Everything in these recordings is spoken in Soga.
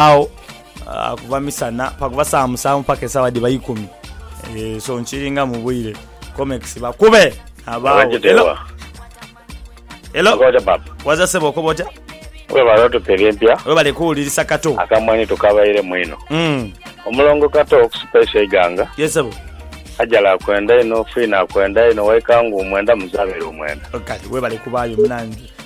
Agho kuva misana pakuva sawa musanvu paka esawa dhiba ikumi eeh so nkiringa mubwire comex bakube nabagho hello hello waza sebo okoba otya Webale otupa ebyempya webale kuwulirisa kato akamwenhi tukabairemu inho omulongo kato okusupeisa eiganga yes sebo Ajala akwenda inho fina akwenda inho waika nguu mwenda muzabere omwenda kale webale kubayo munange.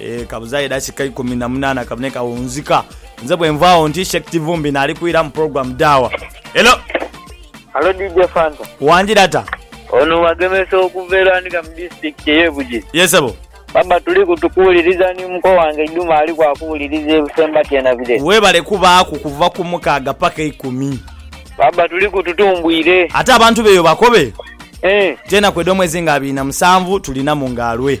Eh, kabuzaayo edakika ikumi na munaana kabune kawunzika. Nze bwenvaawo nti Sheikh Kivumbi naali kwira mu program Daawa. Hello! Halo DJ Fanta. Wangira ta? Ono wagemesa okuva e Lwanika mu disitulikiti ey'e Bugiri. Ye sebo. Baba tuli ku tukuwuliriza ni muko wange Iduma ali ku akuwuliriza e Busembati e Nabire. Webale kubaaku kuva ku mukaaga paka ikumi. Baba tuli ku tutumbwire. Ate abantu beeyo bakobe Eh. nti enaku edh'omwezi nga abiri na musanvu tulinamu nga lwe.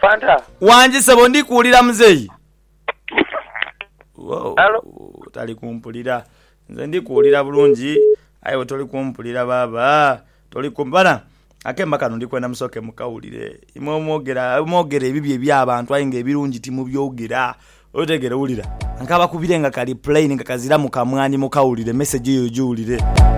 Fanta. Wangi sebo ndi kuwulira muzeeyi. Woo, Hello. tali kumpulira. Nze ndi kuwulira bulungi aye iwe toli kumpulira baaba. Toli ku bana akemba kano ndi kwenda musooke mukawulire. Imwe omwogera mwogera ebibi eby'abantu aye nga ebirungi timubyogera. Otegeera? Wulira. Nkabakubire nga kali plain nga kaziramu kamwani mukawulire, message eyo ogiwulire.